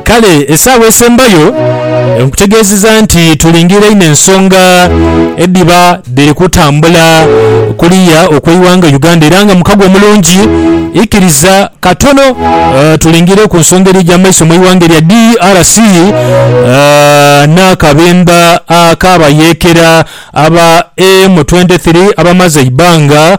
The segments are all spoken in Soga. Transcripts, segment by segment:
Kale esaawa esembayo nkutegeezeza nti tulingirira inho ensonga edhiba dhiri kutambula kuliya okw'eighanga Uganda era nga mukago omulungi. Ikiriza katono tulingirire ku nsonga eri eja mu maiso mu ighanga erya DRC n'akabemba ak'abayeekera aba M23 abamaze eibanga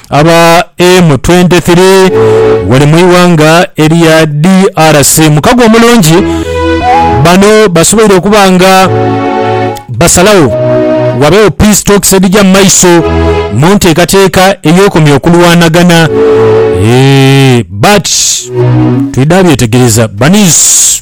Aba M23 ghale mu ighanga erya DRC mukago omulungi. Bano basoboire okuba nga basalagho ghabagho peace talks edhija mu maiso mu nteekateeka ey'okomya okulwanagana. Eeh but twidha byetegereza baniz.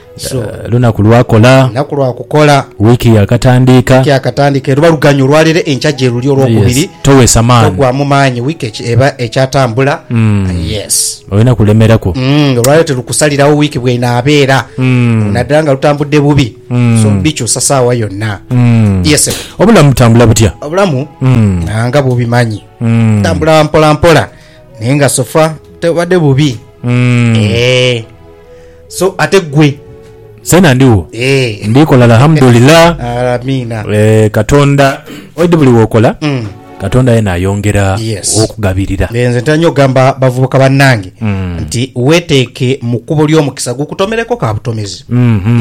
So. Lunaku lwa kola. Lunaku lwa kukola. Wiiki ya katandiika. Wiiki ya katandiika eruba luganya olwa lero enkya gyeruli olwokubiri. Yes. Towesa maani. Togwamu maanyi wiiki eba ekyatambula. Mm. Yes. Olina kulemeraku. Mm. Olwa lero terukusalirawo wiiki bwenaabeera. Mm. Naddala nga lutambudde bubi. Mm. So bikyusa saawa yonna. Mm. Yes. Obulamu butambula butya? Obulamu. Mm. Nga bubimanyi. Mm. Tambula mpola mpola. Naye nga sofa tebubadde bubi. Mm. Eeh. So ate gwe. Nzena ndigho Eeh. ndikola Alhamdulillah Alamiina. Eeh katonda oidhi buli wokola katonda yena ayongera Yes. okugabirira. Eeh, nze ntera nyo ogamba bavubuka banange nti weteeke mu kkubo ly'omukisa gukutomereko ka butomezi.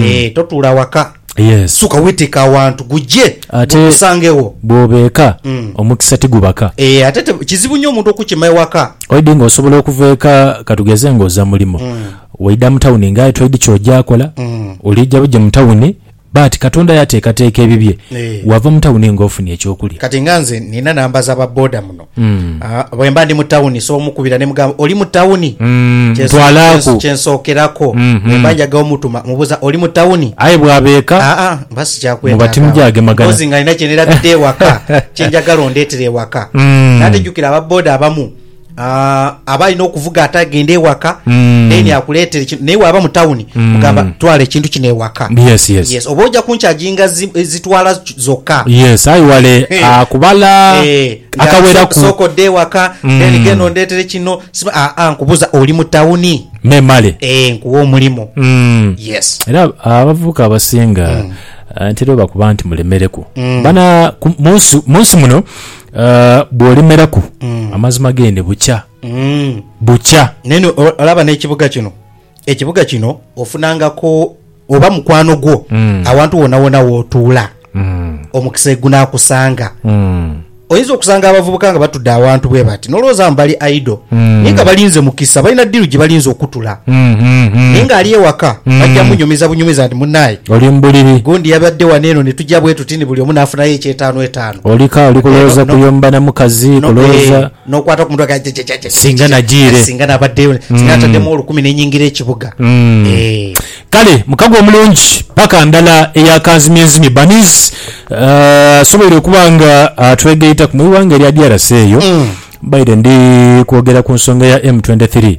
Eeh, totuula waka. Yes. Suka weteke awantu guje Ate- gukusange wo. Bwoba eka Mm. omukisa tigubaka. Eh ate te- kizibu nyo omuntu okukima ewaka. Oidi nga osobola okuva eka katugeze nga oza mulimo. Waida mu tawuni nga aye toidi kyoja akola. Mm. Olija buje mu tawuni but Katonda yatekateka ebibye. Eh. Wava mu tawuni nga ofunye ekyokulya. Kati nga nze nina namba za ba boda muno. Ah, bwe mba ndi mu tawuni nsobola omukubira ne mugamba oli mu tawuni Mm, Kyenso- ntwalaaku. kyenso- kyensookerako Mhm. bwe mba njaga omutuma mubuuza oli mu tawuni aye bwaba eka aa mba sikyakwetaaga. Muba timujagemagana. Mpozi nga nina kyenerabiddhe ewaka kyenjagala ondeetere ewaka Mm. nate jjukira aba boda abamu ah, aba alina okuvuga ate agende ewaka Mm. then akuleetere kino naye waaba mu tawuni Mm. mugamba twala ekintu kino ewaka yes yes, yes oba ojja kunkyajinga zi- zitwala zoka. Yes aye wale akubala akaweraku. Sooka odde ewaka then genda ondetere kino siba aa nkubuza oli mu town? Memale. Eeh nkuwe omulimu. Yes. Era abavubuka abasinga ntera obakuba nti mulemereku bana munsi muno bwolemeraku amazima gee nebukya bukya. Naye olaba nekibuga kino. ekibuga kino ofunangako oba mukwano gwo mm. awantu wonawona wotuula mm. omukisa egunakusanga mm. oyinza okusanga abavubuka nga batudde awantu bwe bati nolowooza mu bali aido mm. naye nga balinze mukisa balina diru gye balinze okutula mm, mm, mm. naye nga ali ewaka mm. bajja munyumiza bunyumiza nti munaye oli mubuliri gundi yabadde wano eno ne tujja bwe tuti ni buli omu nafunayo ekyetaano etaano olika oli kulowooza kuyomba na mukazi kulowooza N'okwata ku mutwe nga jajajajajajaj. Singa najiire. Singa nabaddeyo, singa nataddemu olukumi ne nyingira ekibuga. Eeh. Kale mukago omulungi, paka ndala eya kanzimyenzimye. Bunnies asoboire okuba nga atwegaitaku mu ighanga erya DRC eyo. Mbaire ndi kwogera ku nsonga ya M23.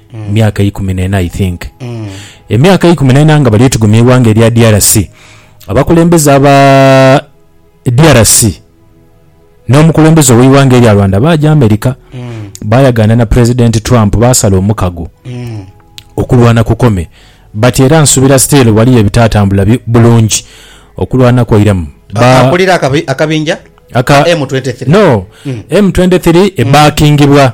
Myaka ikumi n'ena I think. Emyaka eikumi n'ena nga bali etigomya eighanga erya DRC, abakulembeze aba DRC n'omukulembeze ow'eighanga erya Rwanda baaja America baayagaana na President Trump baasala omukago okulwana kukome but era nsubira still waliyo ebitaatambula bi, bulungi okulwana kwairemu. A- Ba- Akulira akabi- akabinja aka ka M23. No, M23 ebaakingibwa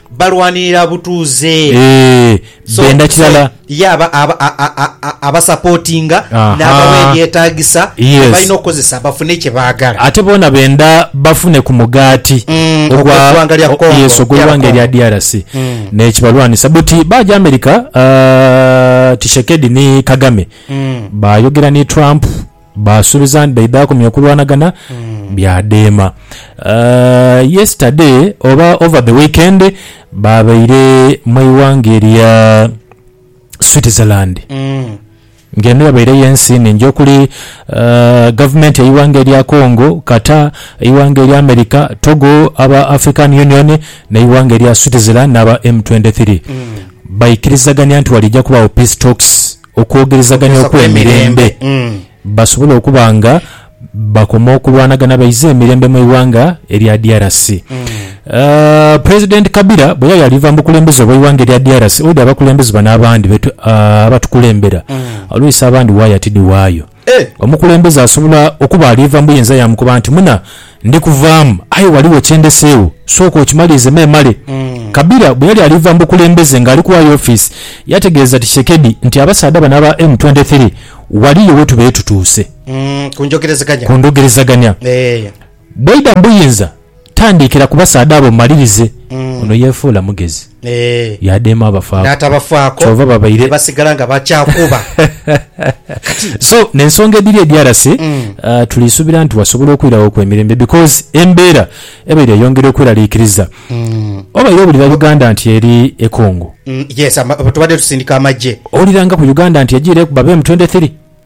Balwanirira butuuze. So, Benda so kirala. ye aba, aba, a, a, a, a, abasapotinga Aha. n'abawa ebyetaagisa bye Yes. balina okukozesa bafune kye baagala. Ate boona benda bafune ku mugaati Mm, ogw'eggwanga lya o- Congo, yes, ogw'eighanga DR erya DRC Mm. n'ekibalwanisa. But baaja America, ah, Tshisekedi ni Kagame Mm. baayogera ni Trump Baasuubiza nti baidha akomya okulwanagana byadheema. Yesterday oba over the weekend baabaire mu ighanga erya Switzerland ng'eno yabaire yo ensi nhingi okuli gavumenti y'eighanga erya Congo, Qatar, eighanga erya America, Togo, aba African Union n'eighanga erya Switzerland n'aba M23. Baikirizagania nti waliija kubaagho Peace Talks. okwogerezaganya okw'emirembe basobole okuba nga bakoma okulwanagana baise emirembe mu ighanga erya DRC. President Kabila bwe yali ali va mu bukulembeze obw'eighanga erya DRC, oidhi abakulembeze bano abandi abatukulembera olwisa abandi waaya tidhi waayo. Omukulembeze asobola okuba aliva mu buyinza yaamukoba nti, Muna, ndi kuvaamu, aye ghaligho kye ndeseegho, sooka okimalirize memale. Kabila bwe yali aliva mu bukulembeze ng'ali kuwaayo ofiisi, yategeeza Tshisekedi nti, Abasaadha bano aba M23 ghaliyo we tubeetutuuse ku njogerezaganya. Bweidha mu buyinza, tandiikira ku basaadha abo omalirize. Ono yeefuula mugezi, yaadheema abafaaku, kyova babaire. So, n'ensonga edhiri e DRC, tuli suubira nti wasobola okwirawo ku emirembe because embeera ebaire eyongera okweraliikiriza. Wabaire owulira Uganda nti eri e Congo. Owulira nga ku Uganda nti ejiireku babe mu twenty three.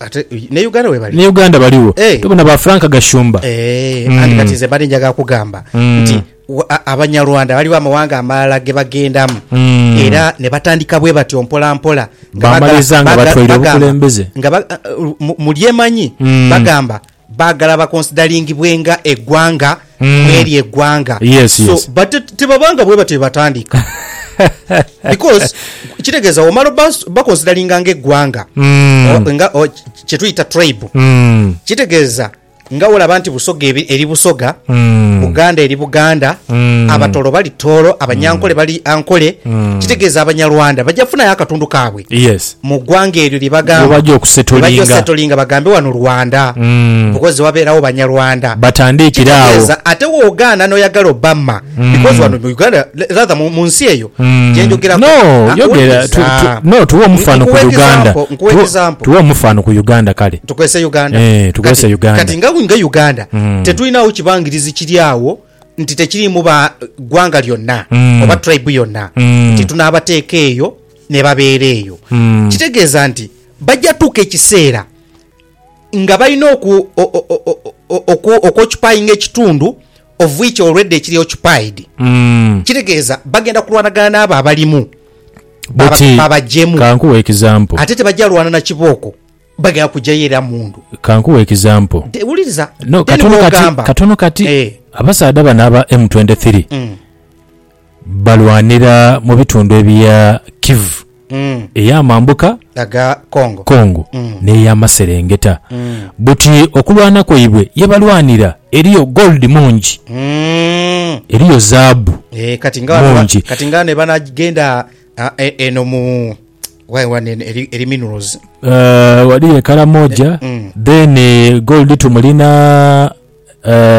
Ate ne Uganda webali. Ni Uganda baligho. Eeh. Tobona ba Frank Gashumba. Eeh anti kati nze mbadde njagala kugamba nti Abanyarwanda waliwo amawanga amalala gebagendamu era nebatandika bwebatyo mpola mpola nga bagala, bagala, bagamba nga ba, mulyemanyi bagamba. Baagala bakonsidalingibwenga eggwanga mw'eryo eggwanga. Yes, So, yes. but te- tebabanga bwe batyo bwe batandika. Because kitegeeza omala obas- bakonsidalinga ng'eggwanga Mm. O- nga o- kye tuyita tribe Mm. kitegeeza nga olaba nti busoga ebi- eri busoga Mm. buganda eri buganda Mm. abatoro bali toro abanyankole bali ankole kitegeeza abanyarwanda bajja kufunayo akatundu kaabwe Yes. mu gwanga eryo lyebagamba Lyebagya okusetolinga. lyebagya osetolinga bagambe wano Rwanda Mm. because wabeerawo banyarwanda Batandiikire awo. Kitegeeza ate wogaana noyagala Obama because wano mu Uganda rather mu, mu nsi eyo Mm. gyenjogerako No, Ah, yogera wuliriza. tu- tu- no, tuwe omufano ku Nkuwa Uganda. example, nkuwa Tuwe- example. Tuwe omufano ku Uganda kale. tukozese uganda Eh, tukozese Kati- Uganda. kati nga nga uganda Mm. tetulinawo kibangirizi kiri awo nti tekirimu ba gwanga lyonna Mm. oba tribe yonna Mm. nti tunaabateeka eyo ne babeera eyo. Kitegeeza nti baja tuuka ekiseera nga balina oku, o, o, o, o, oku, okwocupayinga ekitundu of which already kiri occupied. Kitegeeza bagenda kulwanagana n'abo abalimu baba- Buti, babajemu. kankuwe example. Ate tebaja lwana na kibooko, bagenda kujayo era mundu. Kankuwe example. Te- Wuliriza, No, then katono kati, bw'ogamba- katono kati, Eh, abasaadha bano aba M23, mm. balwanira mu bitundu ebya Kivu ey'amambuka, Congo, n'ey'amaserengeta. Buti okulwana kwaibwe ye balwanira eriyo gold mungi, eriyo zaabu mungi. Ghaliyo e Karamoja, then gold tumulina.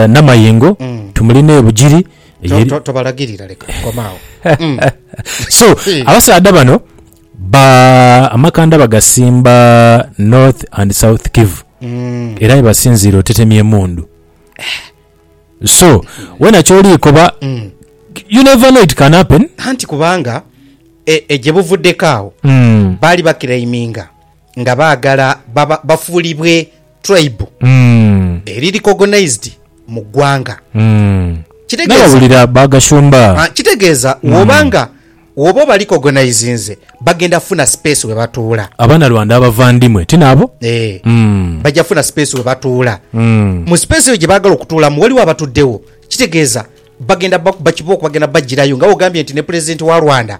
Namayengo tumuli ne Bugiri eye. Tobalagirira leka koma agho. So abasaadha bano ba amakanda bagasimba North and South Kivu era yebasinziira otetemya emundu so wena kyoli koba you never know it can happen. Anti kubanga gyebuvuddeko agho baali ba claiminga nga baagala baba bafuulibwe tribe eri recognised mu ggwanga. Kitegeeza, ah, kitegeeza woba nga woba obarecognisinze bagenda kufuna space we batuula. Abanyarwanda abavandimwe ti nabo? Eh, bajja kufuna space we batuula. Mu space eyo gye baagala okutuulamu waliwo abatuddewo. Kitegeeza bagenda bakuba kibooko bagenda bajjirayo nga bw'ogambye nti ne Pulezidenti wa Rwanda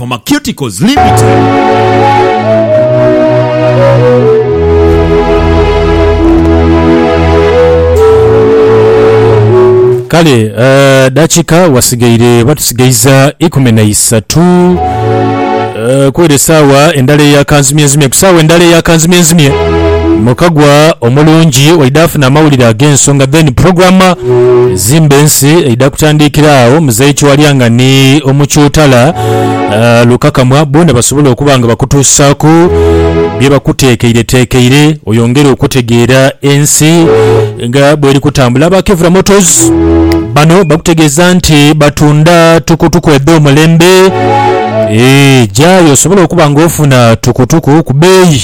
Pharmaceuticals Limited. Kale dakika wasigaire oba tusigaiza ikumi na isatu kwere saawa endala eya kanzimyenzimye ku saawa endala eya kanzimyenzimye mukagwa omulungi waidha afuna amawulire agensonga then program Zimba ensi eidha kutandiikira agho Muzei Kiwalyanga ni Omukyutala Lukakamwa boona basobole okuba nga bakutuusaaku bye bakuteekeireteekeire oyongere okutegeera ensi nga bweri kutambula. Aba Kevra Motors bano bakutegeeza nti batunda tukutuku edh'omulembe. Eeh, gyayo osobole okuba nga ofuna tukutuku ku bbeeyi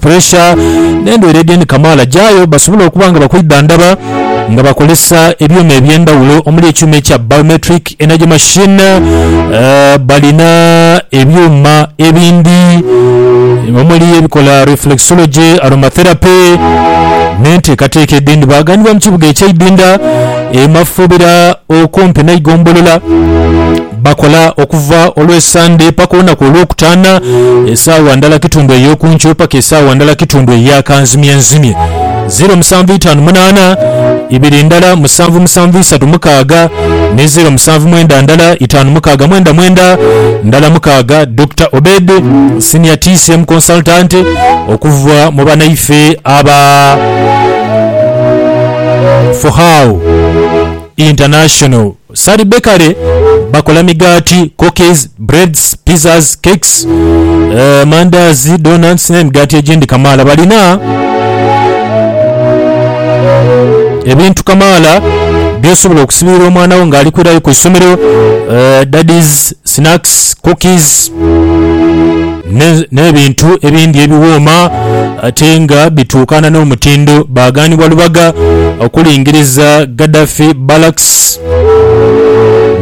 puresha n'endwaire edh'endi kamaala gyayo basobole okuba nga bakwidhandhaba nga bakozesa ebyuma eby'endhaghulo omuli ekyuma ekya Biometric Energy Machine, balina ebyuma ebindi omuli ebikola Reflexology, Aromatherapy n'enteekateeka edhindi. Baaganibwa mu kibuga eky'eidhindha e Mafuubira okumpi n'eigombolola. Bakola okuva Olwesande paka olunaku Olwokutaana, esaawa ndala kitundu ey'oku nkyo paka esaawa ndala kitundu eya kanzimyenzimye. Ziro musanvu itaanu munaana, ibiri ndala musanvu musanvu isatu mukaaga, ni ziro musanvu mwenda ndala itaanu mukaaga mwenda mwenda ndala mukaaga. Dokita Obed, Senior TCM Consultant okuva mu banaife aba For How International. Sally Bakery bakola migaati, cookies, breads, pizzas, cakes, mandaazi, donuts n'emigaati egindi kamaala. Balina ebintu kamaala by'osobola okusibiira omwana wo ng'ali kwirayo ku isomero, daddy's snacks, cookies ne n'ebintu ebindi ebiwooma ate nga bituukana n'omutindo baagaanibwa Lubaga okulingiriza Gaddafi Barracks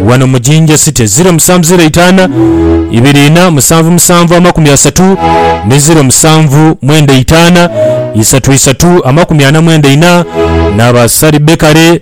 wano mu Jinja City. Ziro musanvu ziro eitaana ibiri inha musanvu musanvu amakumi asatu ni ziro musanvu mwenda eitaana isatu isatu amakumi ana mwenda inha n'aba Sari Bakery.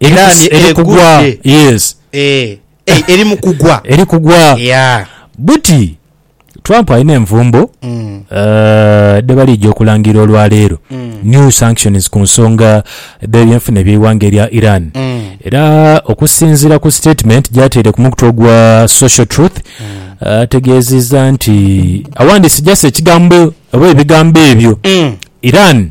Iraani Eri- eri kugwa egudde. yes Eh, eh, eri mu kugwa eri kugwa Yeah. buti trump alina envumbo Mm. eh, dhebalija okulangira olwaleero new sanctions ku nsonga dh'ebyenfuna eby'eighanga erya iran Mm. era okusinziira ku statement gyateire ku mukutu ogwa social truth ategeezezza nti awandiise just ekigambo oba ebigambo ebyo Mm. iran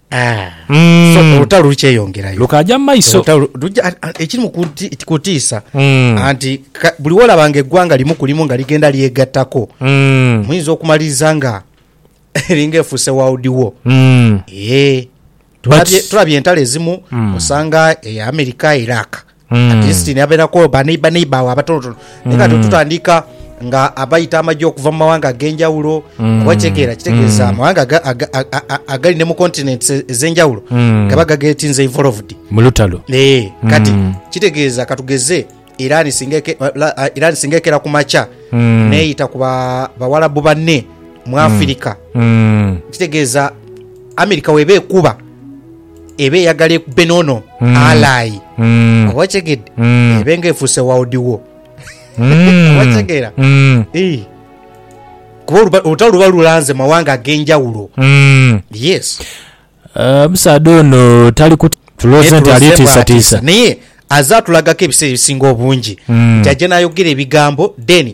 Olutalo lukyeyongerayo. Lukaaja mu maiso. Ekiri mu kutiisa anti buli wolaba nga eggwanga limu ku limu nga ligenda lyegattako muyinza okumaliriza nga eringa efuuse world war. Tulabye entalo ezimu osanga eya America, Iraq. at least nabeerako baneiba neiba awo abatonotono naye kati otutandika nga abaita amagye okuva mu mawanga ag'enjawulo kuba kitegeera kitegeeza amawanga aga- aga- a- a- a- agali ne mu continents e- ez'enjawulo gaba gagetinze involved mu lutalo Eh, kati kitegeeza katugeze iran singa eke- la- a- iran singa ekera ku makya neyita ku ba- bawalabu banne mu afirika Mm. kitegeeza amerika weba ekuba eba eyagala ekube n'ono alayi. Oba okitegedde? Ebe nga efuuse world war. Oba okitegeera? Ii. Kuba oluba- olutalo luba lulanze mu mawanga ag'enjawulo. Yes. Eh, omusaadha ono tali kut- tulowooza Naye nti ali tulooze bw'atiisa. tiisatiisa naye aze atulagako ebiseera ebisinga obungi nti ajja n'ayogera ebigambo then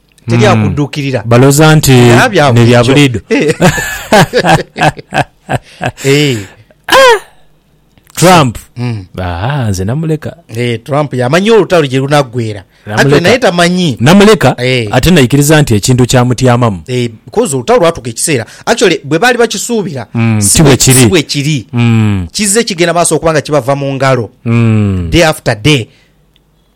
teri akudukirira. Baloza nti Era bya ne bya bulijo. bulido. Eh, Trump. mm. Aha, nze namuleka. Eh, Trump yamanyi olutalo gye lunaggwera. Anti Namuleka. naye tamanyi. Namuleka Eh. ate naikiriza nti ekintu kyamutyamamu. Eh, because olutalo lwatuuka ekiseera actually bwe baali bakisuubira Mm, si si bwe bwe- kiri. si bwe kiri Mm, kizze kigenda maaso okuba nga kibava mu ngalo mm. day after day